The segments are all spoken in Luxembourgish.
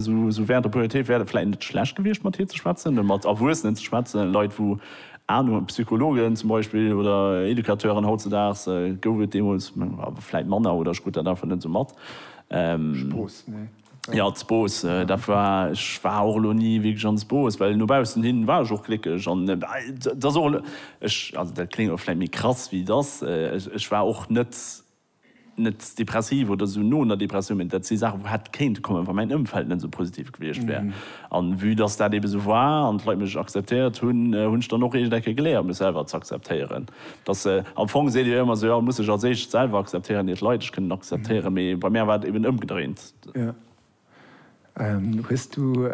Sou während der Pubertéit wär et vläit net schlecht gewiescht, mat hir ze schwätzen, oder mat Erwuessenen ze schwätzen, Leit wou Anung, Psychologen zum Beispill oder Educateuren. Hautzedaags gouf et deemools awer vläit manner, oder ech krut dat einfach net esou mat. Jo, Z'Bos, dat war, ech war och elo ni wierklech an Z'Bos, well no baussen hin war ech och glécklech an et ass och, also dat kléngt elo vläit méi krass wéi et ass, ech war och net net depressiv oder esou no einer Depressioun, mä dat si Saachen, wou hätt kéinte kommen, wa mäin Ëmfeld net esou positiv gewiescht wär. An vue dass dat ebe esou war an d'Leit mech akzeptéiert hunn, hunn ech dann och eegent Ecke geléiert, mech selwer z'akzeptéieren. Dass, am Fong seet Dir jo ëmmer esou, jo, muss sech als éischt selwer akzeptéieren, ier d'Leit dech kënnen akzeptéieren, mä bei mär war et eben ëmgedréint. Hues du,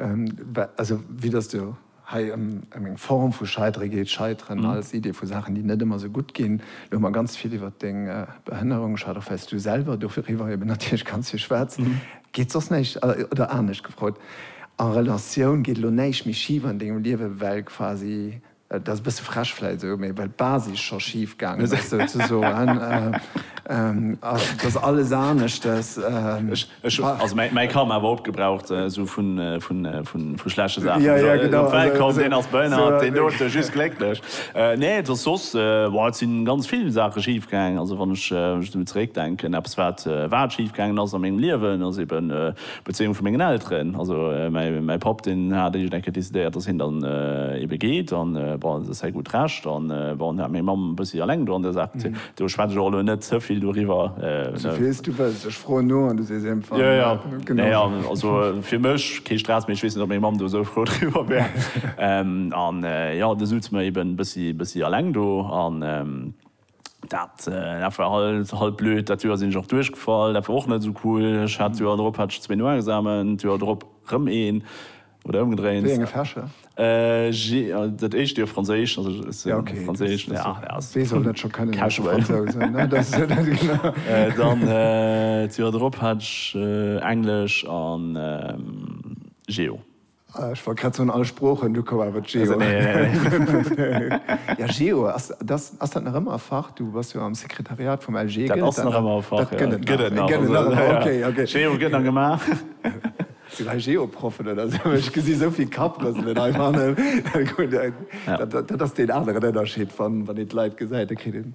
also vue dass et jo hei ëm eng Form vu Scheidere geet, Scheiteren als Idee vu Saachen, déi net ëmmer esou gutt ginn, elo hu mer ganz vill iwwert deng Behënnerung geschwat, och wèil's du selwer doriwwer eben natierlech ganz vill schwätz, geet soss näischt, oder anescht gefrot, a Relatioun, geet elo näischt méi schif an dengem Liewe well quasi Et ass e bësse frech vläit esou, mee well d'Basis scho schif gaangen ass, souzesoen, ass et ass alles aneschtes. Ech hu, also mäi Ka ma awer opgebraucht, esou vun, vun, vun, vu schlechte Saachen. Jo, jo, genau. Op d'Welt komm, deen ass behënnert, deen do, dee just glécklech. Nee, et ass soss, bon, et si ganz vill Saache schif gaangen. Also wann ech esou zeréckdenken, eppes wat, wat schif gaangen ass a mengem Liewen, ass eben, D'Bezéiung vu mengen Elteren, also mäi Papp, deen hat eegent eng Kéier decidéiert, datt hien dann ebe geet, an bon, dat ass säi gutt Recht, an bon, hien hat meng Mamm e bëssi eleng do an där Saach gezunn. Do schwätz ech och elo net ze vill doriwwer. Souphies du wëlls, ech froen no an du sees iech emfang. Jo, jo, nee, an also fir mech kee Stress, mee ech weess net, ob meng Mamm do esou frou driwwer wär. An jo, du sutz mer eben e bëssi eleng do. Dat war halt blöd. Dat Joer sinn ech och duerchgefall. Dat war och net esou cool. Ech hat d'Joer drop hat ech zwee Noexamen, d'Joer drop rëm een, oder ëmgedréint. Wéi enge Fächer? Dat éischt Joer Franséisch, also ech hat Franséisch. Wee soll dat scho kënnen, ausser Fransousen? Dann d'Joer drop hat ech Englesch a Geo. Ech wollt grad soen, all Sproochen, du koum awer d'Geo. Ja, Geo, ass dat nach ëmmer e Fach? Du bass jo am Sekretariat vum LG. Dat ass nach ëmmer e Fach, jo. Dat gëtt et nach. Dat gëtt et nach, jo. Okay, okay. Geo gëtt nach gemaach. Sinn hei Geo-Proffen oder esou? Ech gesi esou vill Kapprëselen hei fannen. Dat ass deen aneren Ënnerscheed, wann een d'Leit gesäit, da kritt een.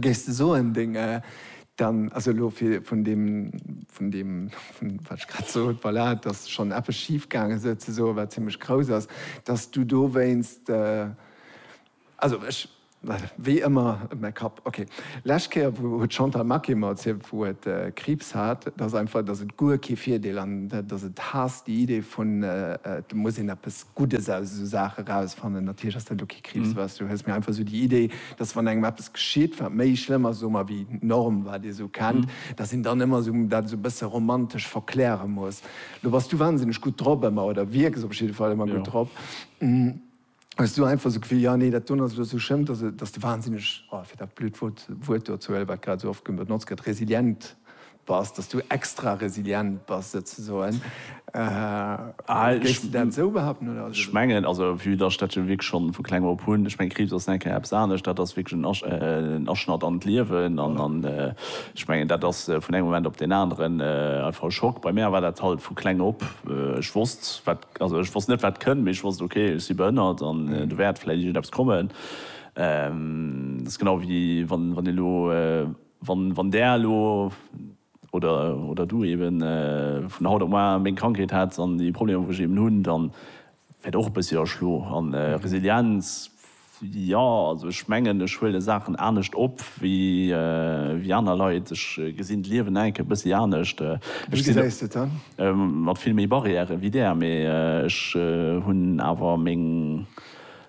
Géifs de soen, deng, dann, also elo fir vun deem, vun deem, vun wat ech grad sot, voilà, dass schonn eppes schif gaange sou ze soen, wat zimmlech grouss ass, dass du dowéinst, also ech, wéi ëmmer, mäi Kapp, ok. Lescht Kéier wou, huet d'Chantal Maquet mer erzielt, wou et Kriibs hat, dass einfach, dass et guer kee Virdeel an dass et haasst déi Idee vun, et muss een eppes Guddes aus esou Saache rausfannen. Natierlech ass dat elo kee Kriibs, was du hues, mä einfach esou déi Idee, dass wann engem eppes geschitt, wat méi schlëmm ass, soe mer, wéi d'Norm, wat ee sou kennt, dass een dann ëmmer sou dat sou e bësse romantesch verkläre muss. Lo bass du wansinneg gutt drop ëmmer, oder wierks op jidde Fall ëmmer gutt drop. Hues du einfach sou d'Gefill, jo, nee, dat doen ass elo sou schlëmm, dass, dass de wansinneg, oh, fir dat blöd Wuert do ze huelen, wat grad sou oft benotzt gëtt, resilient Bass, dass du extra resilient bass souzesoen. Géifs de dat esou behaupten oder? Ech mengen, also vue dass ech dat jo wierklech schonn vu kleng op hunn, ech mengen Kriibs ass nengkéier eppes anescht, dat ass wierklech en Aschnatt an d'Liewen an ech mengen dat ass vun engem Moment op deen aneren einfach e Schock. Bei mär war dat halt vu kleng op, ech wosst wat, also ech wosst net wat kënnt, mee ech wosst ok ech si behënnert an do wäert vläicht iergendeppes kommen. Dat ass genau wéi wann een elo Wann Där elo, oder Du eben, vun haut op moar meng Krankheet hätts an déi Problemer wou ech eben hunn, dann wäert och e bëssi erschlo. An Resilienz, jo also ech mengen ech huele Saachen anescht op wéi aner Leit. Ech gesinn d'Liewen enk e bëssi anescht. Ech sinn mat vill méi Barrièren wéi Där, mee ech hunn awer meng.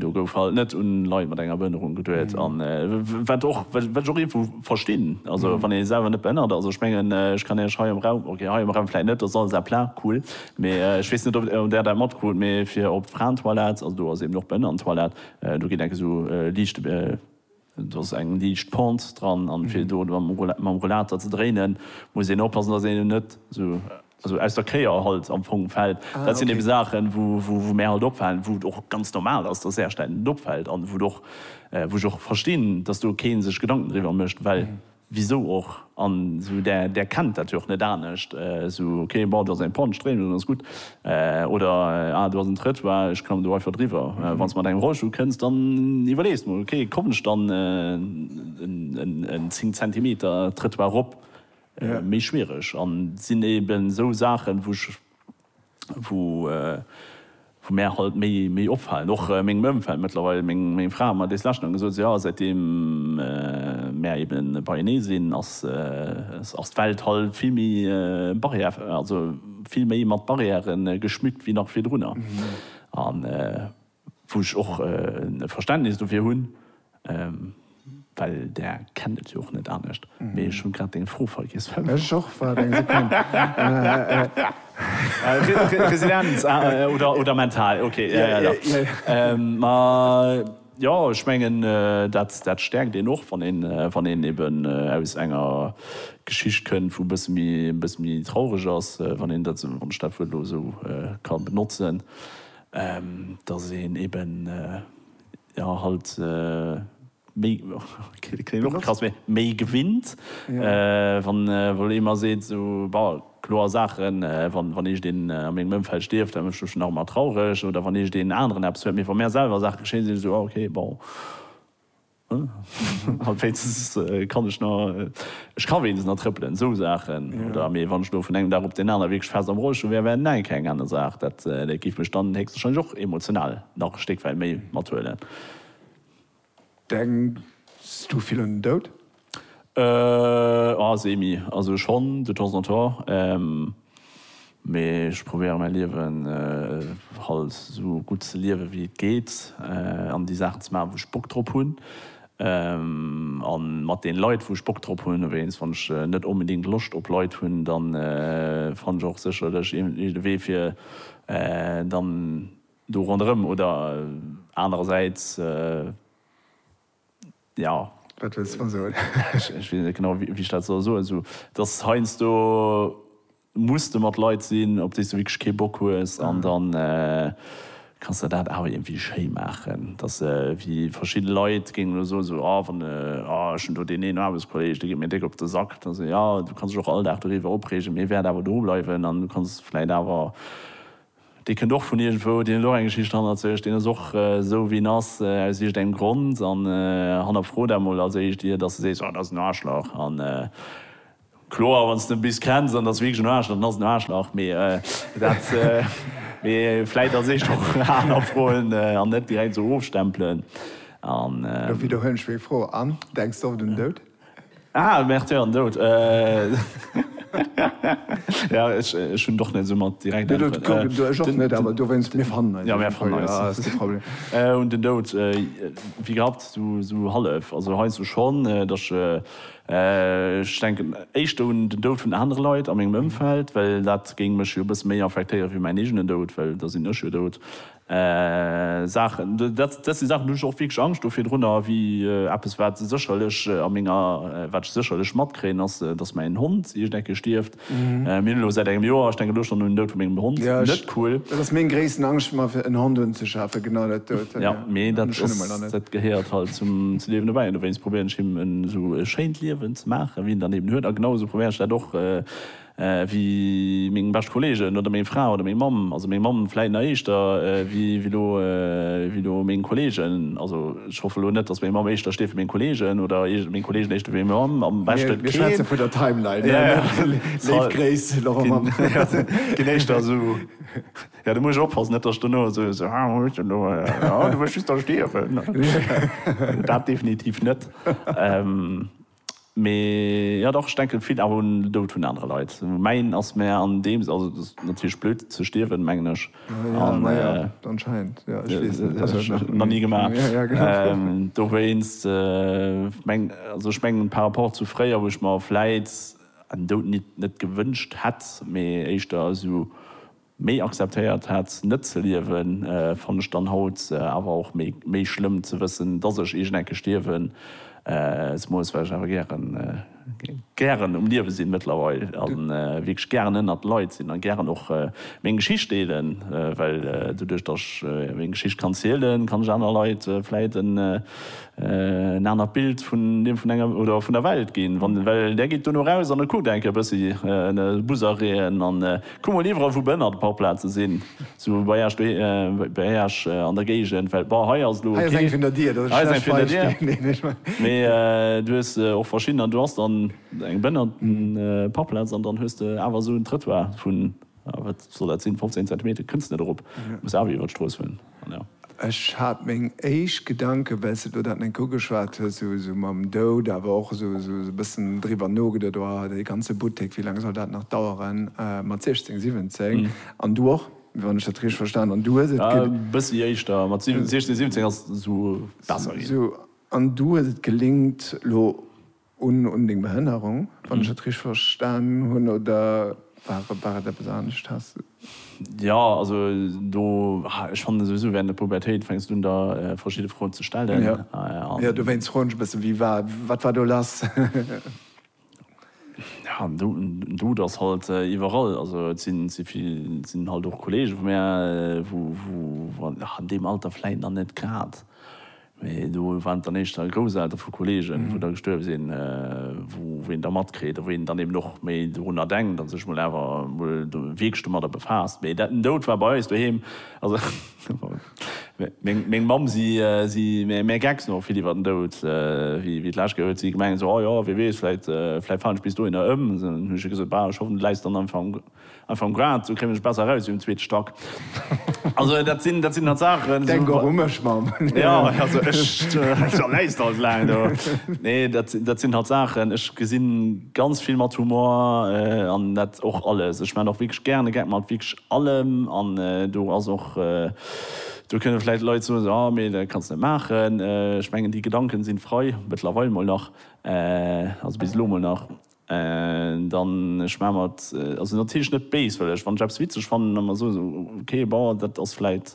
Do gouf halt net un Leit mat enger Behënnerung geduet an wat och wat ech och iergwo verstinn, also wann ee selwer net behënnert ass, ech mengen ech kann Iech hei am Raum, ok hei am Raum vläit net, dat ass alles à plat, cool, mee ech weess net ob Der dat matkrut, mee fir op d'Fraentoilette, also do ass eben och d'Behënnerentoilette, do geet enk esou liicht. Do ass eng liicht Pente dran an fir do mam Rollater ze dréinen muss een oppassen dass een net esou aus der Kéier halt am Fong fällt. Dat sinn eben Saachen wou mär halt opfalen, wou et och ganz normal ass dass Äerstein net opfällt an wou ech och verstinn dass do keen sech Gedanken driwwer mécht well Wisou och? An esou där, där kennt dat jo och net anescht. Esou, ok, bon, do ass eng Panne, Stréimel, dann ass gutt. Oder, ah, do ass en Trëttoir, ech klammen do einfach driwwer. Wann s de mat engem Rollstull kënns, dann iwwerlees mol, ok, kommen ech dann en 10 Zentimeter Trëttoir erop? Méi schwiereg. An et sinn eben esou Saachen, wou ech. wou mär halt méi opfalen, och mengem Ëmfeld mëttlerweil, meng Fra hat mer dees lescht nach gesot, esou jo, säitdeem mär ebe beienee sinn, ass d'Welt halt vill méi barrière, also vill méi mat Barrièren geschmückt wéi nach virdrunner. Wou ech och e Verständnis dofir hunn, well Der kennt et jo och net anescht. Mee ech hu grad deng Fro vergiess. Ech och. Waart eng Sekonn. Resilienz oder mental, ok. Ma jo, ech mengen, dat stäerkt een och, wann een eben aus enger Geschicht kënnt, wou e bësse méi traureg ass, wann ech dat Wuert elo esou ka benotzen. dass een eben jo halt méi, klingt och elo krass, mee méi gewinnt, wann wou ee mer seet sou, bon, kloer Saachen, wann wann iergendeen a mengem Ëmfeld stierft, da mécht mech dat och emmer traureg oder wann iergendeen aneren eppes huet, mee wa mär selwer Saache geschéien, si mer sou, ah, ok, bon. An wéinstens kann ech nach, ech ka wéinstens nach trëppelen, esou Saachen. Oder, mee wann ech elo vun engem Dag op deen anere wierklech fest am Rollstull wär, wär näinke eng aner Saach. Dat géif mech dann héchstwahrscheinlech och emotional nach e Stéck wäit méi mathuelen. Denks du vill un den Doud? Semi. Also schonn, de temps en temps. Mee ech probéiere mäi Liewen halt esou gutt ze liewen wéi et geet an déi Saachen ze maachen wou ech Bock drop hunn a mat den Leit wou ech Bock drop hunn. Wéinst wann ech net onbedéngt Loscht op Leit hunn dann fann ech och sécherlech iergendwéi de Wee fir dann do ronderëm oder anerersäits. jo. Wat wëlls de mer soen? Ech weess net genau, wéi ech dat soll soen. Esou, dass heiansdo muss de mat Leit sinn, op déi s de wierklech kee Bock hues. An da kanns de dat awer iergendwéi schéi maachen. Dass wéi verschidde Leit géingen elo soen, esou, ah, wann, ah, ech hunn do deen een Aarbechtskolleeg, dee geet mir déck op de Sack. Da sot, jo, du kanns dech och all Dag doriwwer opreegen, mee e wäert awer do bleiwen an du kanns vläicht awer Dee kënnt och vun iergendwou, deen huet och eng Geschicht hannert sech, deen ass och esou wéi en ass aus iergendengem Grond. An hannerfro dat mol als éischt ier dass de sees, oh dat ass en Aarschlach. A kloer, wann s de e bis kenns an et ass wierklech en Aarschlach, dann ass et en Aarschlach. Mee dat, mee vläit als éischt och hannerfroen an net direkt esou ofstempelen. An. Lo widderhuelen ech meng Fro an denks oft un den Doud. Ah, Märtyr an Doud. Ja, ech hunn och net esou mat direkt Äntweren. Du, ech och net, awer dowéinst, mir fannen eis. Ja, mir fannen eis. Ah, ass kee Problem. Un den Doud, wéi gehabt, esou hallef. Also heiansdo schonn, datt ech denken éischter un den Doud vun anere Leit a mengem Ëmfeld, well dat géing mech jo e bësse méi affektéieren, wéi mäin eegenen Doud, well da sinn ech jo dout. Saachen, dat si Saachen, do hunn ech och wierklech Angscht do virdrunner, wéi eppes, wat sécherlech a menger, wat ech sécherlech matkréien, ass, dass mäin Hond iergend eng Kéier stierft. Mir hunn elo säit engem Joer, ech denken elo schonn un den Doud vu mengem Hond, net cool. Dat ass meng gréissten Angscht, mer fir en Hond unzeschafen, genau dat dout. Jo, mee dat ass, dat gehéiert halt zum Liewen dobäi an dowéinst probéieren ech him en esou e schéint Liewen ze maachen, wéi en dann eben huet a genau esou probéieren ech dat och, wéi meng bescht Kollegen oder meng Fra oder meng Mamm, also meng Mamm vläit nach éischter wéi lo wéi lo meng Kollegen, also ech hoffe lo net, datt meng Mamm éischter steet wéi meng Kollegen oder iergend meng Kollegen éischter wéi meng Mamm, am beschte keen. Mir schwätze vun der Timeline, ja, ja, léif Gréiss, Laurent Mamm. Keen éischter esou, jo, do muss ech oppassen, net datt ech dono esou so, ah, wou hues de elo, ah, du wëlls just da stierwen, dat definitiv net. Mee jo dach, ech denken vill awer un den Doud vun anere Leit. Mäin ass mär an deem Sënn, also et ass natierlech blöd ze stierwen mengen ech, nach ni gemaach, dowéinst mengen also ech mengen par rapport zu fréier wou ech mer vläit en Doud nit net gewënscht hätt, mee éischter esou. Méi akzeptéiert hat net ze liewen fann ech dann haut awer och méi schlëmm ze wëssen dass ech iergend eng Kéier stierwen s moes, well ech awer gären gären um Liewe sinn mëttlerweil a wierklech gären ënnert Leit sinn a gären och meng Geschicht deelen, well doduerch dass ech meng Geschicht kann zielen kann ech aner Leit vläit en anert Bild vun dem vun enger oder vun der Welt ginn, well där geet duerno raus an e kuckt eng Kéier e bëssi Busereen an Kuck mol iwwerall wou Bën an de Parkplaze sinn, sou bei Äech bei Äech an der Géigend, well bon hei ass elo ok, hei ass eng vun der Dier, hei ass eng vun der Dier, mee du hues och verschidden an du has dann eng Bën an de Parkplaz an dann hues de awer esou en Trëttoir vun, wat soll dat sinn, 15 Zentimeter kënns net erop, muss awer iwwer d'Strooss huelen. Ech hat meng éischt Gedanken, well s de do dat net ugeschwat hues, esou mam Doud, awer och esou e bëssen driwwer nogeduet, oh, dee ganze Buttek, wéi laang soll dat nach daueren mat 16, 17? An du och, wann ech dat richteg verstan hunn, du hues et. E bëssi éischter, mat 16, 17 ass esou besser ginn. An du hues et gelingt, elo Un deng Behënnerung, wann ech et richteg verstan hunn, oder war et eppes anescht? Has de. Jo, also do, ech fannen souwisou während der Pubertéit fänks du un der verschidde Froen ze stellen. Jo, dowéinst froen ech e bëssen, wéi war, wat war do lass? Jo, en Dout ass halt iwwerall. Also et sinn halt och Kollege vu mär, wou an deem Alter vläit nach net grad Mee do waren et dann éischter d'Grousseltere vu Kolleegen, wou da gestuerwe sinn, wou een da matkritt a wou een dann eben och méi dorunner denkt a sech emol awer emol wierklech domadder befaasst. Mee den Doud war bei eis doheem, also meng Mamm, si si mär gecks no vill iwwer den Doud, wéi et lassgéi huet si gemengt esou, oh jo, wee weess, vläit falen ech bis dohinner ëm. Hu ech hir gesot, bah, ech hoffen, et läis dann am Fong. Einfach am Grad, esou kréien ech besser eraus wéi um zweete Stack. Also dat sinn, dat sinn halt Saachen. Denk och u mech, Mamm. Jo, also ech, da läis de halt laang do. Nee, dat, dat sinn halt Saachen, ech gesinn ganz vill mat Humor an dat och alles. Ech maachen och wierklech gären e Gag mat wierklech allem an do ass och, do kënne vläicht Leit soen esou, ah mee dat kanns net maachen. Ech mengen déi Gedanken sinn frei, mëttlerweil mol nach, also bis elo mol nach. Dann ech maach mer et also natierlech net béis, well ech wann ech eppes witzeg fannen, da mer soen okay bon dat ass vläit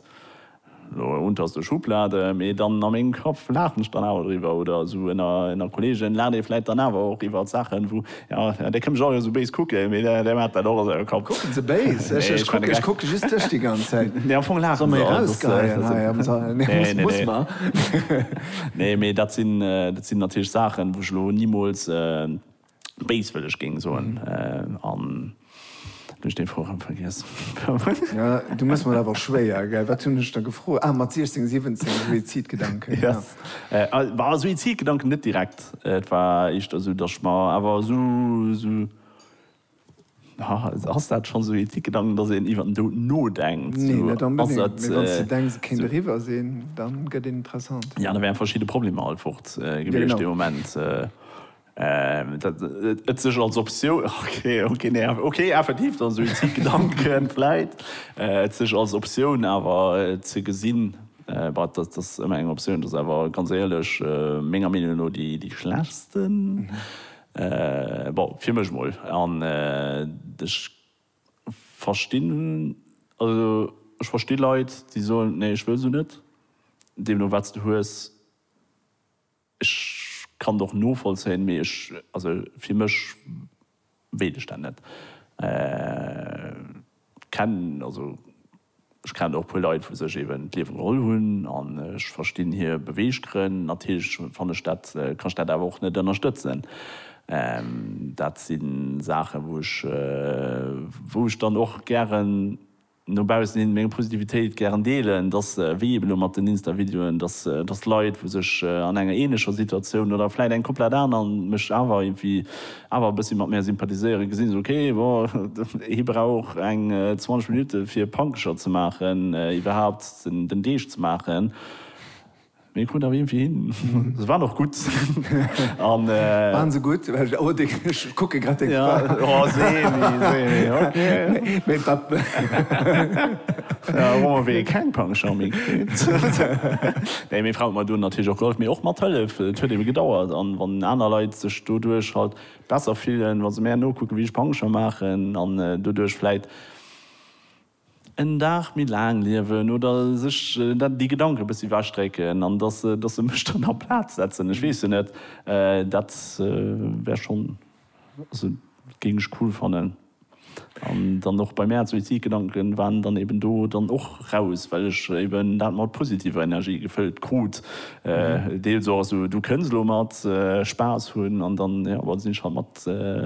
elo unter der Schublade, mee dann a mengem Kapp laachen ech dann awer driwwer oder esou ënner Kolleegen laacht ee vläit dann awer och iwwert Saachen wou jo dee kënnt mech och esou béis kucken, mee dee maacht dat och a sengem Kapp. Kucken se béis? Ech kucken ech kucken just dech déi ganz Zäit. Nee am Fong laachen se. Soll mer erausgeheien hei am Sall? Nee muss mer. Nee, mee dat sinn, dat sinn natierlech Saachen, wou ech elo nimools béiswëlleg géing soen. An elo hunn ech dee Froe rëm vergiess. Ja, du mëss mer awer schwéier, gell? Wat hunn ech der gefrot? Ah, mat 16, 17, Suizidgedanken, jo. Bah, Suizidgedanken net direkt. Et war éischter esou, datt ech mer awer esou, esou. Ass dat schonn esou ee ticke Gedanken, datt een iwwer den Doud nodenkt? Nee, net onbedéngt. Mee wann s de denks, et kéint eriwwer sinn, da gëtt een interessant. Jo, da wären verschidde Problemer alt fort gewiescht dee Moment. Et sech als Optioun, ok, nee, ok, effektiv, dann Suizidgedanken, vläit. Et sech als Optioun awer ze gesinn, bah, dat ass ëmmer eng Optioun. Dat ass awer, ganz éierlech, menger Meenung no déi schlechtsten. Bon, fir mech mol. An ech verstinn, also ech versti Leit, déi soen, nee, ech wëll se net. Deemno wat s de hues, ech kann et och novollzéien, mee ech, also fir mech wéilt ech dat net. Kenn, also. Ech kennen och e puer Leit wou sech eben d'Liewe geholl hunn an ech verstinn hir Beweeggrënn. Natierlech fanne ech dat, kann ech dat awer och net ënnerstëtzen. Dat si Saachen wou ech, wou ech dann och gären no baussen hin meng Positivitéit gären deelen, dass wéi eben elo mat den Insta-Videoen, dass, dass Leit wou sech an enger ähnlecher Situatioun oder vläit eng komplett aner mech awer irgendwie awer e bëssi mat mär sympathiséieren, gesinn se, ok, bon, hie brauch eng 20 Minutte fir e Pankescher ze maachen, iwwerhaapt den Deeg ze maachen, mee e krut awer iergendwéi hin. Se waren och gutt. Waren se gutt? Oh, ech kucke grad deng Fra. Jo, Seemi, Seemi, ok. Mee wat? Hu mer wéi keng Pankescher méi kritt. Nee, meng Fra huet mer do natierlech och gehollef, mee och mathëllef, et huet ebe gedauert, an wann aner Leit. doduerch halt besser fillen, wa se mär nokucken, wéi ech Pancher maachen an doduerch vläit en Dag méi laang liewen oder sech déi Gedanken e bëssi ewechdrécken an dass se, dass se mech dann a Plaz setzen. Ech weess jo net, dat wär schonn, also géing ech cool fannen. An dann och bei mär Suizidgedanken waren dann eben do dann och raus, well ech eben dat mat positiver Energie gefëllt krut. Deels och esou, du kënns elo mat Spaass hunn an dann, jo, da sinn ech halt mat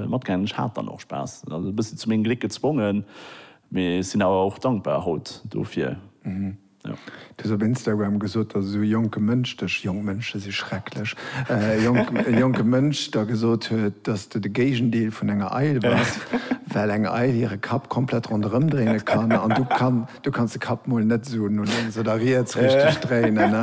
matgaangen. Ech hat dann och Spaass, also e bëssi zu mengem Gléck gezwongen, mee sinn awer och dankbar haut dofir. Du hues op Instagram gesot, datt esou e jonke Mënsch dech, jonk Mënsche si schrecklech, e jonke Mënsch der gesot huet, datt s du de Géigendeel vun enger Eil bass, well eng Eil hire Kapp komplett ronderëm dréine kann an du kanns de Kapp mol net esou no lénks oder riets richteg dréinen.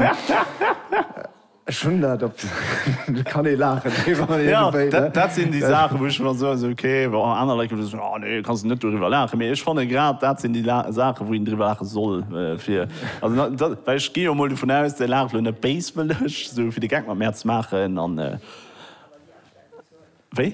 Ech hunn dat op de, kann ee laachen driwwer iergendwéi, ne? Dat sinn déi Saachen, wou ech mer soen, esou ok, bon, aner Leit gëtt soen, oh nee, kanns de net doriwwer laachen. Mee ech fanne grad dat sinn déi Saachen, wou een driwwer laache soll, fir, also dat, well ech gi jo mol dovun aus, Dir laacht elo net béiswëlleg, esou fir de Geck mat mär ze maachen an, wéi?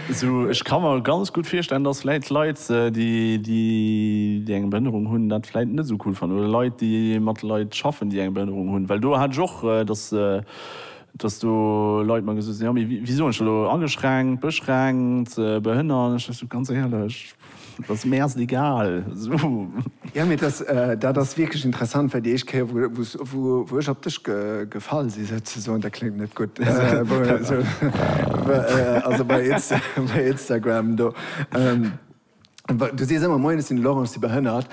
Sou, ech ka mer ganz gutt virstellen, dass vläit Leit, déi eng Behënnerung hunn, dat vläit net esou cool fannen, oder Leit, déi mat Leit schaffen, déi eng Behënnerung hunn, well do hat ech och, dass, dass do Leit mer gesot hunn, jo, mee wéi soen ech dat elo, ageschränkt, beschränkt, behënnert, an ech dächt esou, ganz éierlech, Et ass mir erst egal. Jo, mee dat ass wierklech interessant, well déi éischt Kéier, wou ech op dech gefall sinn, souzesoen, dat kléngt net gutt, also bei Instagram do, du sees ëmmer, Moien, ech sinn de Laurent, ech si behënnert.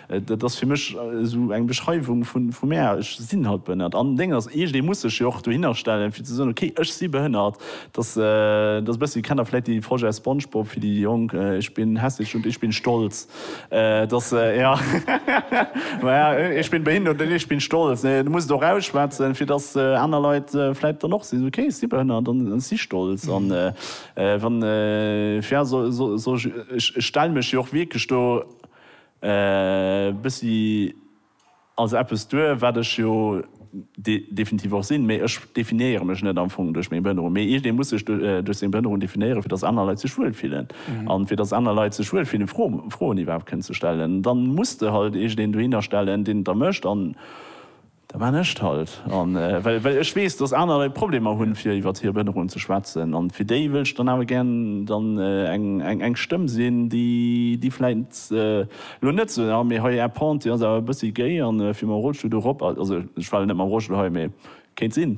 Dat ass fir mech esou eng Beschreiwung vu mär, ech sinn halt behënnert. An Deng ass eescht, ee muss sech jo och dohinner stellen, fir ze soen, ok, ech si behënnert. Dass, dass bëssi, kennt Der vläicht déi Folge aus Spongebob, fir déi Jonk, Ich bin hässlich und ich bin stolz. Dass, jo, ma ja, Ich bin behindert und ich bin stolz. Nee, Du muss et och ausschwätzen, fir dass aner Leit vläicht dann och sinn, ok, ech si behënnert an ech si stolz. An wann, fir, soll ech, ech stell mech jo och wierklech do, E bëssi als eppes duer, wat ech jo definitiv och sinn, mee ech definéiere mech net am Fong duerch meng Behënnerung, mee iergendee muss sech duerch seng Behënnerung definéieren, fir datt aner Leit sech wuel fillen. An fir datt aner Leit sech wuel fillen, Froen iwwerhaapt kënnen ze stellen, dann muss de halt iergendeen dohinner stellen, deen et da mécht. An Da man ech et halt. An well ech weess, dass aner Leit Problemer hunn, fir iwwert hir Behënnerung ze schwätzen, an fir déi wëllt ech dann awer gär dann eng Stëmm sinn, déi vläit elo net sou, ah mee hei Är Pente, déi ass awer e bëssi géi, a fir mam Rollstull do erop, also ech war elo net mam Rollstull hei, mee kéint sinn.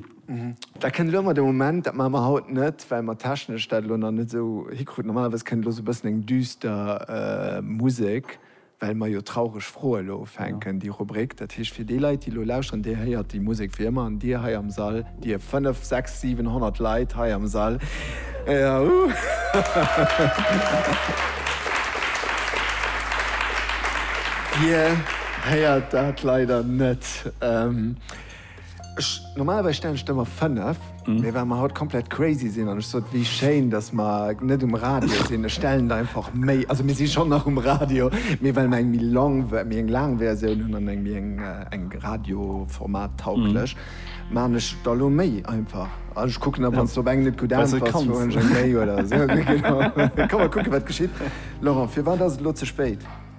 Dat kënnt elo ëmmer de Moment. Dat maache mer haut net, well mer technesch dat elo nach net esou hikruten. Normalerweis kënnt elo esou e bëssen eng düster Musek well mer jo traureg Froe elo ufänken, déi Rubrik. Dat heescht, fir déi Leit, déi elo lauschteren, Dir héiert déi Musek wéi ëmmer. An Dir hei am Sall, Dir fënnef, sechs, siwen, honnert Leit hei am Sall, Dir héiert dat leider net. Ech, normalerweis stellen ech der emmer 5, mee well mer haut komplett crazy sinn an ech sot, wéi schéin, datt mer net um Radio sinn, ech stellen der einfach méi, also mir si schonn nach um Radio, mee well mer eng méi long, méi eng laang Versioun hunn an eng méi eng, eng radioformat-tauglech, maachen ech der lo méi einfach. An ech kucken da, wann s de op eng net gutt äntwers, soen ech eng méi oder esou. Kommen mer kucken, wat geschitt. Laurent, firwat ass et lo ze spéit?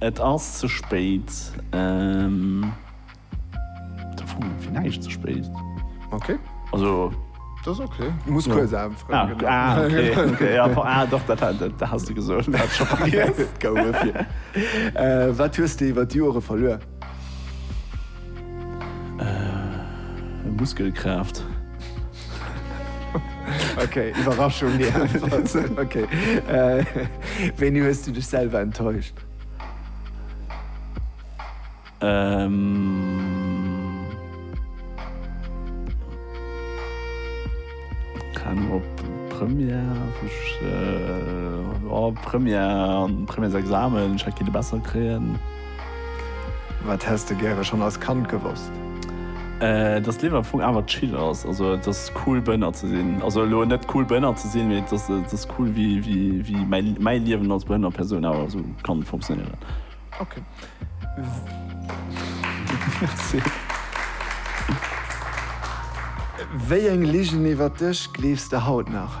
Et ass ze spéit. Fir näischt ze spéit. Ok. Also. Dat ass ok. Du muss kuerz anfroen. Ah, okay. Ah, doch, dat hat s de gesot. Gouf et fir. Wat hues de iwwer d'Jore verluer? Muskelkraaft. Ok, Iwwerraschung déi einfach. Ok, wéini hues du dech selwer enttäuscht? Keng Ahnung, op Première wou ech, oh Première, Premièresexamen, ech hätt kinte besser kréien. Wat häss de gäre schonn als Kand gewosst? Dass d'Liewen am Fong awer chill ass, also et ass cool Bënner ze sinn. Also elo net cool Bënner ze sinn, mee et ass, et ass cool wéi, wéi, wéi mäi, mäi Liewen als behënnert Persoun awer esou kann funktionéieren. Ok. Merci. Wéi eng Ligen iwwert dech gleefs de haut nach?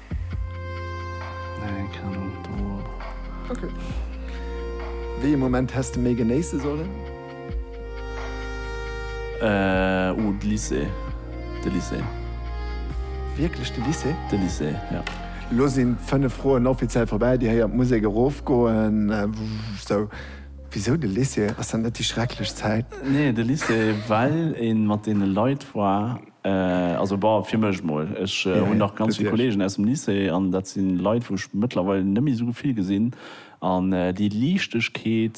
Wéi ee Moment häss de méi genéisse sollen? Oh, de Lycée. De Lycée. Wierklech de Lycée? De Lycée, jo. Elo sinn d'fënnef Froen offiziell vorbäi. Dir héiert d'Musek erofgoen. Sou, wisou de Lycée? Ass dat net déi schrecklech Zäit? Nee, de Lycée, well ee mat deene Leit war. Also bah, fir mech mol. Ech hunn nach ganz vill Kollegen aus dem Lycée an dat si Leit, wou ech mëttlerweil net méi esou vill gesinn. An déi Liichtegkeet,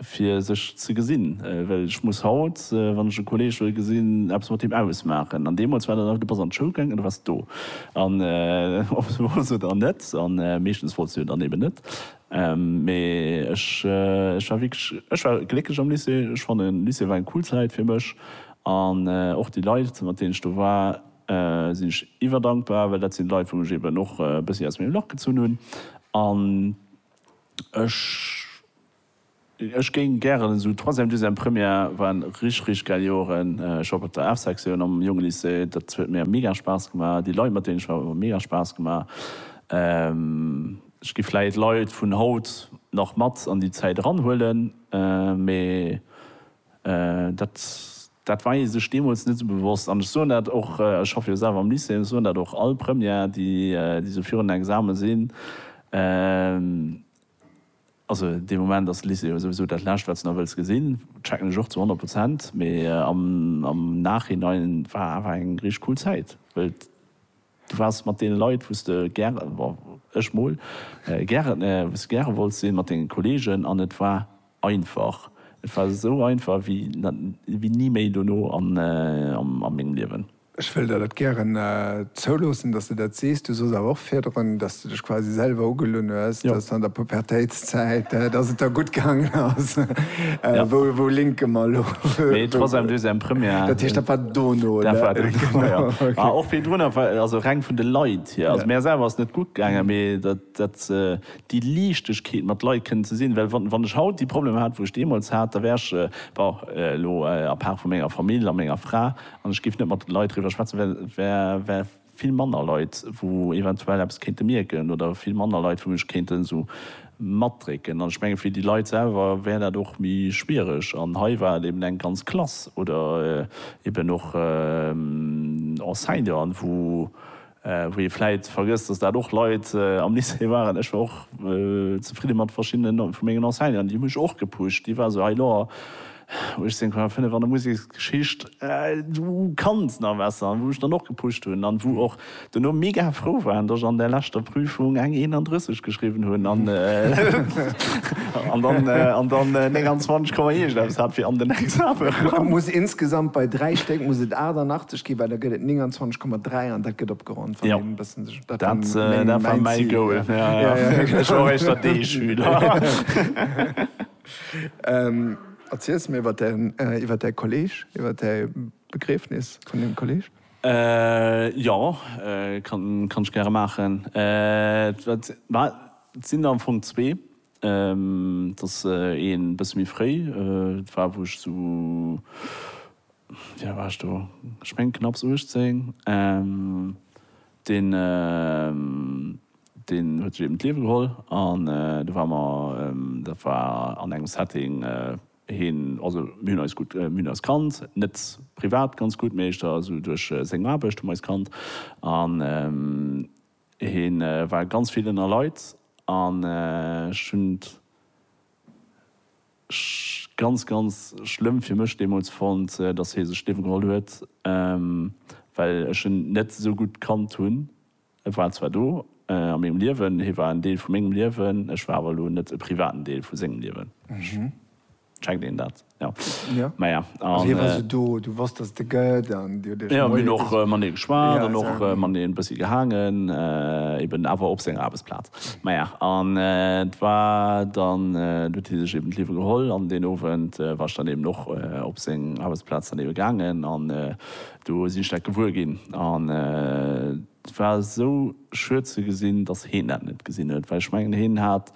fir sech ze gesinn, well ech muss haut, wann ech e Kolleg wëll gesinn, eppes mat deem ausmaachen. An deemools war dat einfach, du bass an d'Schoul gaangen an du waars do. An ob se wollts oder net, a meeschtens wollts du jo dann eben net, Mee ech war wierklech, ech war glécklech am Lycée. Ech fannen Lycée war eng cool Zäit fir mech an och déi Leit mat deenen ech do war sinn ech iwwerdankbar, well dat sinn Leit wou mech eben och e bëssi aus mengem Lach gezunn hunn an ech, Ech géing gären esou Troisième, Deuxième, Première waren rich rich gäil Joeren. Ech op op der F Sektioun am Jonge Lycée, dat huet mir mega Spaass gemaach. Déi Leit mat deenen ech war hu mega Spaass gemaach. Ech gi vläit Leit vun haut nach mat an déi Zäit eran huelen, mee dat dat war ee sech deemools net esou bewosst. An ech soen dat och, ech schaffe jo selwer am Lycée, ech soen dat och all Première déi déi esou virun den Exame sinn, Also dee Moment ass Lycée jo souwisou dat Lescht, wat s de nach wëlls gesinn. Checken ech och zu honnert Prozent. Mee am Nachhinein war awer eng richteg cool Zäit, well du waars mat deene Leit, wou s de gäre, ech mol, gäre, wou s de gäre wollts sinn, mat denge Kolleegen an et war, Einfach. Et war esou einfach wéi ni méi dono a mengem Liewen. Ech wëll der dat gären zouloossen, dass de dat sees. Du soss awer och virdrun, dass de dech quasi selwer ugelunn hues, dass an der Pubertéitszäit, dass et der gutt gaangen ass. Wou linke mer elo? Mee troisième, deuxième, première. Dat heescht, dat war dono, oder? Dat war dono, jo. Mä och virdrun, also reng vun de Leit hier. Also mär selwer ass et net gutt gaangen, mee dat. datt déi Liichtegkeet mat Leit kënnen ze sinn, well wann ech haut déi Problemer hätt, wou ech deemools hat, da wär ech, bon, elo apaart vu menger Famill a menger Fra, an ech géif net mat Leit driwwer schwätzen, well vill manner Leit, wou eventuell eppes kéinte mierken, oder vill manner Leit, wou mech kéinten esou matdrécken. An ech menge fir déi Leit selwer wär dat och méi schwiereg. An hei war et eben eng ganz Klass oder eben och Enseignanten, wou Wou ee vläit vergësst, dass dat och Leit am Lycée waren, ech war och zefridde mat verschiddenen vu mengen Enseignanten, déi hu mech och gepusht, déi war esou, hei lo, 18,5 an der Museksgeschicht, du kanns nach besser, an wou mech dann och gepusht hunn an wou och duerno mega frou waren, dass ech an där leschter Prüfung eng 31 geschriwwen hunn an dann 29 Komma iergendeppes hat fir an den Exame erëm. Muss insgesamt bei dräi Stéck muss et 88. Okay, well da gëtt et 29,3 an dat gëtt opgeronnt, wann een e bëssen sech. Dat war mäi Goal. Ech war och éischt der D-Schüler. Erziels mir iwwer däi, iwwer däi Kolleg, iwwer däi Begriefnis vun deem Kolleg. Jo, kann ech gäre maachen. Et sinn der am Fong zwee. Et ass een e bësse méi fréi, dat war wou ech esou Wéi al war ech do? Ech mengen knapps 18. Deen, deen huet sech eben d'Liewe geholl an do ware mer, dat war an engem Setting, heen, also mir hunn eis gutt, mir hunn eis kannt, net privat ganz gutt, mee éischter esou duerch seng Aarbecht hu mer eis kannt an hee war ganz vill ënner Leit an ech hunn. Ech ganz ganz schlëmm fir mech deemols fonnt dass hee sech d'Liewen geholl huet well ech en net esou gutt kannt hunn. E war zwar do a mengem Liewen, hee war en Deel vu mengem Liewen, ech war awer elo net e privaten Deel vu sengem Liewen. Checkt een dat? Jo. Jo. Maja Also hie war an. esou do, du wosst dass et e gëtt an dir hutt iech Jo, mir hunn och matenee geschwat an och matenee e bëssi gehaangen, eben awer op senger Aarbechtsplaz. Maja, an et war dann, do huet hie sech eben d'Liewe geholl. An deen Owend war ech dann eben och op seng Aarbechtsplaz dann eben gaangen an do sinn ech dat gewuer ginn. An et war esou schued ze gesinn, datt heen dat net gesinn huet, well ech mengen heen hat,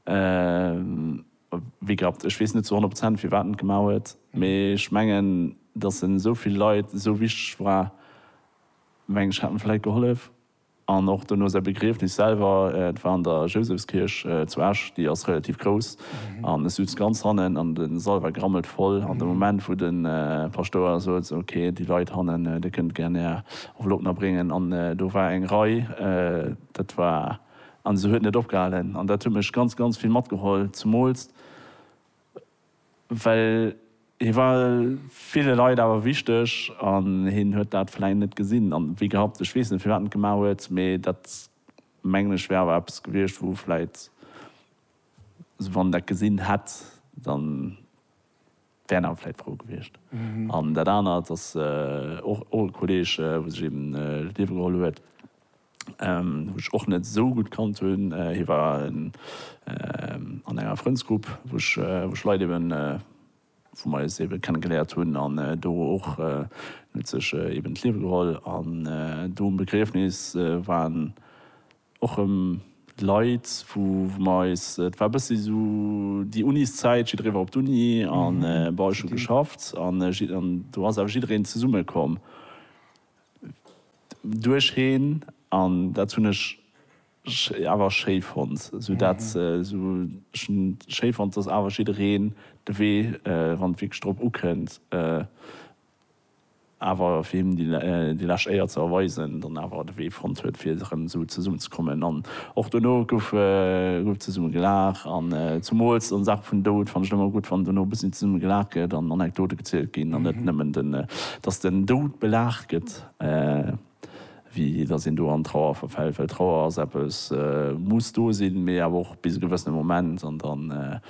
wéi gehabt, ech weess net zu honnert Prozent firwat en et gemaach huet, mee ech mengen, datt en esou vill Leit esou wichteg war, meng ech, hätt en vläicht gehollef. An och dono säi Begriefnis selwer, et war an der Jousefskierch zu Esch, déi ass relativ grouss, an e sutz ganz hannen an de Sall war grammelt voll. An de Moment wou de Paschtouer sot, esou ok, déi Leit hannen, dir kënnt gär är Enveloppen abréngen, an do war eng Rei, dat war, an se huet net opgehalen. An dat huet mech ganz, ganz vill matgeholl, zemools, Well hie war ville Leit awer wichteg an hien huet dat vläicht net gesinn an, wéi gehapt, ech weess net, firwat en et gemaach huet, mee dat, mengen ech, wär awer eppes gewiescht, wou vläicht, also wann en dat gesinn hätt, da wär en awer vläicht frou gewiescht. An dat anert ass och e Kolleeg, wou sech eeben d'Liewe geholl huet. wou ech och net esou gutt kannt hunn. Hie war an enger Frëndsgrupp, wou ech wou ech Leit eben, wou mer eis ebe kenne geléiert hunn an do och, en huet sech eben d'Liewe geholl. An do um Begriefnis waren och rëm Leit, wou wou mer eis, et war e bëssi esou déi Uniszäit, jiddweree war op d'Uni an bon ech hu geschafft an do ass awer jiddwereen zesumme komm. Duercheen an dat hunn ech awer schéi fonnt, sou dat sou ech hunn schéi fonnt, dass awer jiddereen de Wee, wann et wierklech drop ukënnt, awer fir him déi lescht Éier ze erweisen, dann awer de Wee fonnt huet fir erëm esou zesummen ze kommen. An och dono gouf zesumme gelaach an zumools an Saache vun Doud fannt ech et ëmmer gutt, wann dono e bëssi zesumme gelaach gëtt an Anekdote gezielt ginn an net nëmmen den Dass den Doud belacht gëtt, wéi dass een do an Trauer verfält, well Trauer ass eppes, muss do sinn, mee awer och bis e gewëssene Moment. An da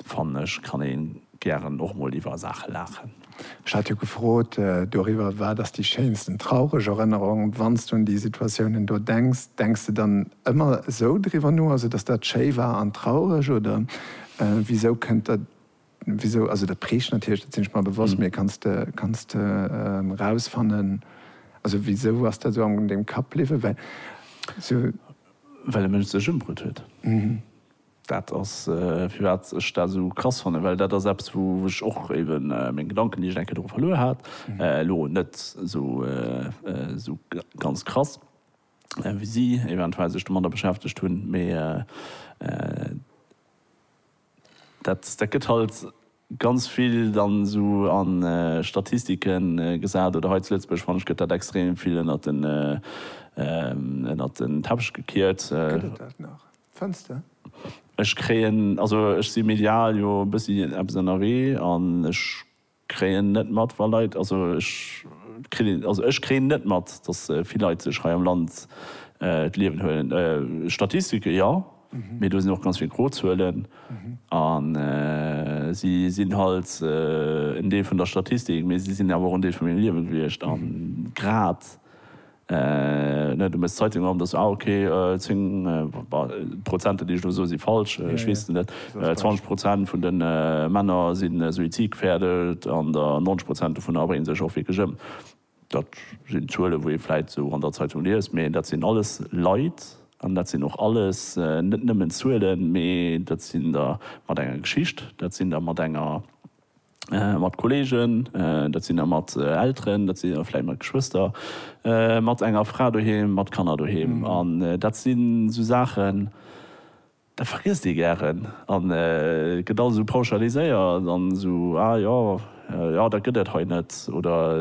fannen ech, kann ee gären och mol iwwer Saache laachen. Ech hat jo gefrot doriwwer, Wat ass déi schéinsten traureg Erënnerung? Wann s de un déi Situatiounen do denks, denks de dann ëmmer esou driwwer no, also dass dat schéi war an traureg, oder wisou kënnt der Wisou? Also dat prägt natierlech, dat sinn ech mer bewosst, mee kanns de, kanns de rausfannen, also wisou ass dat esou an dengem Kapp bliwwen? Well esou. Well e Mënsch sech ëmbrutt huet. Dat ass firwat ech dat esou krass fannen, well dat ass eppes wou ech och eben meng Gedanken, déi ech eng Kéier doru verluer hat, elo net esou ganz krass wéi si eventuell sech domadder beschäftegt hunn, mee Dat gëtt halt ganz vill dann esou a Statistike gesat, oder hei zu Lëtzebuerg fanne ech gëtt dat extrem vill ënnert den ënnert den Teppech gekiert. Gëtt et dat nach? Fënns de? Ech kréien, also ech si medial jo e bëssi eppes ënnerwee an ech. Kréien net mat wa Leit, also ech kritt, also ech kréien net mat, dass vill Leit sech hei am Land d'Liewen huelen. Statistike jo, mee do sinn och ganz vill gro Zuelen a si sinn halt en Deel vun der Statistik, mee si sinn awer och en Deel vu mengem Liewe gewiescht a grad Ne, du mëss d'Zeitung erëm. Dass, ah ok, 10, d'Prozenter déi ech elo soe si falsch, ech weess et net, 20 Prozent vun de Männer si suizidgefährdet an der 90 Prozent dovunner brénge sech och wierklech ëm. Dat sinn Zuele wou ee vläit esou an der Zeitung liest, mee dat sinn alles Leit an dat sinn och alles net nëmmen Zuelen, mee dat sinn der mat enger Geschicht, dat sinn der mat enger. mat Kolleegen, dat sinn der mat Elteren, dat sinn der vläit mat Geschwëster, mat enger Fra doheem, mat Kanner doheem. An dat sinn esou Saachen, dat vergiesst ee gären an et gëtt alles esou pauschaliséiert an esou, ah jo, jo dat gëtt et hei net oder.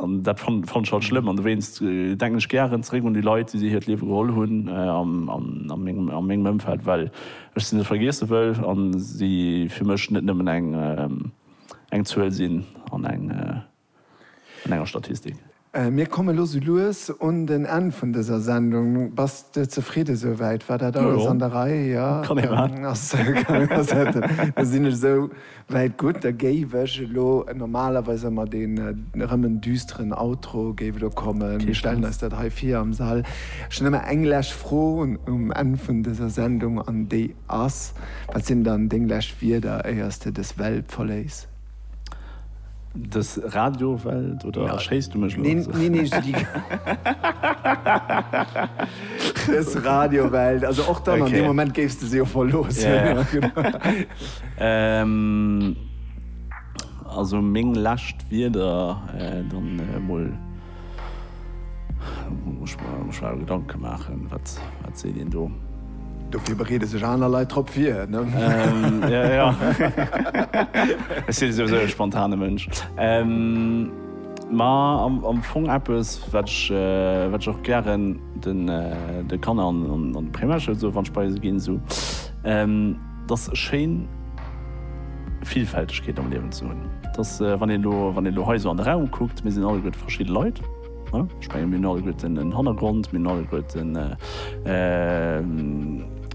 An dat fannt ech halt schlëmm. An dowéinst denken ech gären zeréck un déi Leit, déi si hiert Liewe geholl hunn a mengem Ëmfeld, well ech si net vergiesse wëll a si fir mech net nëmmen eng Zuel sinn an enger Statistik. Mir komme lo sou lues un den Enn vun dëser Sendung. Bass de zefridde souwäit? War dat alles an der Rei? Jo, kann ee maachen. Dann sinn ech esou. Well gutt, da géif ech elo, normalerweis ëmmer deen erëm en düsteren Outro géif elo kommen, mir stellen eis dat hei vir am Sall. Ech hunn ëmmer eng lech Fro um Enn vun dëser Sendung an déi ass, Wat sinn dann deng lech Wierder éiers de dës Welt verléiss? Dës Radiowelt oder erschéiss du mech elo? Neen, neen, neen, ech si déi. Dës Radiowelt, also och dann an deem Moment géifs de se jo verloossen. Also meng lescht Wierder dann emol. Muss mer mech awer Gedanke maachen, wat seet een do? Dofir bereede sech aner Leit drop vir, ne? Jo, jo. Ech si souwisou e spontane Mënsch. Ma am Fong eppes, wat ech och gären de Kanner an de Primärschoul soe wann ech bei se ginn. 't ass schéin Villfältegkeet am Liewen ze hunn. 't ass, wann een elo, wann een elo hei esou an de Raum kuckt, mir sinn alleguerte verschidde Leit. Ech menge mir hunn alleguerten en en Hannergrond, mir hunn alleguerten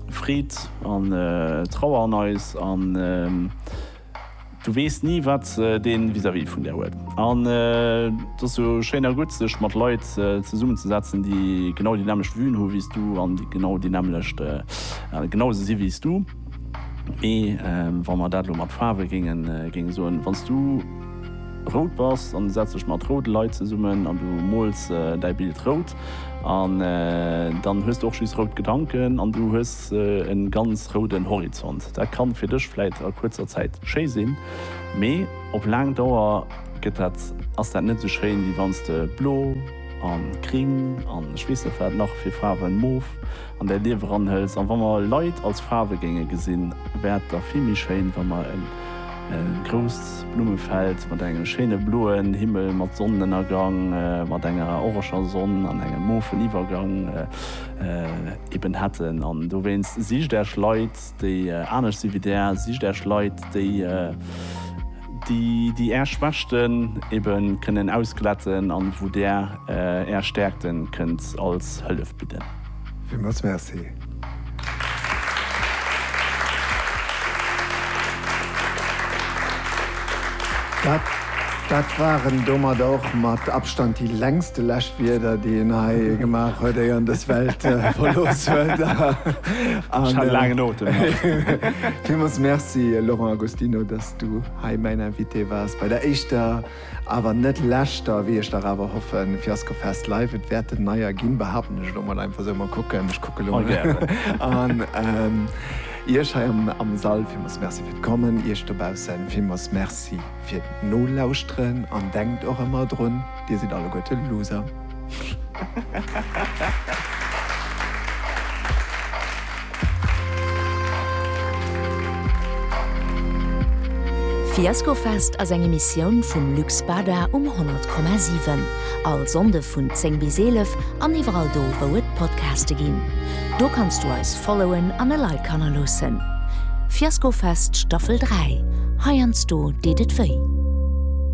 Freed an Trauer an eis an. Du weess ni wat dee vis-à-vis vun der huet. An et ass jo schéin a gutt sech mat Leit zesummen ze setzen déi genau déi nämmlecht Vuen hu wéi s du an déi genau déi nämmlecht genau esou si wéi s du. Mee wa mer dat elo mat Faarwe géinge soen, wann s du rout bass an du setz dech mat roude Leit zesummen an du mools däi Bild rout, an dann hues du och just rout Gedanken an du hues Hues e ganz rouden Horizont? Dat kann fir dech vläit a kuerzer Zäit schéi sinn, mee op laang Dauer gëtt dat, ass dat net esou schéin, wéi wann s de blo a gring an ech weess net wat nach fir Faarwen, mof, an däi Liewe ranhëls. An wa mer Leit als Faarwe géinge gesinn, wär et da vill méi schéin, wa mer e grousst Blummefeld mat engem schéine bloen Himmel, mat Sonnenënnergang, mat enger orange Sonn an engem mofen Iwwergang, eben hätten an dowéinst sicht Äech Leit déi anescht si wéi Där, sicht Äech Leit déi déi Är Schwächten eben kënnen ausglätten an wou Där Är Stäerkten kënnt als Hëllef bidden. Villmools Merci. Dat waren domadder och mat Abstand déi längste Läschwieder, déi een hei gemaach huet, éier en dës Welt verlooss huet. Ech hat e laangen Otem nach. Villmools Merci, Laurent Agostino, dass s du hei mäin Invité waars bei der éischter, awer net leschter, wéi ech dach awer hoffen, Fiaskofest Live. Et wäert en neier ginn, behaapten ech elo mol einfach esou. Mol kucken, ech kucke elo an Iech hei am Sall. Villmools Merci fir d'Kommen. Iech dobaussen villmools Merci. Fir nolauschteren an denkt och emmer drun, dir sidd alleguerte Loser. Fiaskofest ass eng Emissioun vum Lux Bada um 100,7. All Sonnde vun 10 bis 11 an iwwerall do wou et Podcaste ginn. Do kanns du eis followen an e Like hannerloossen. Fiasko Fest Staffel 3, heiansdo deet et wéi.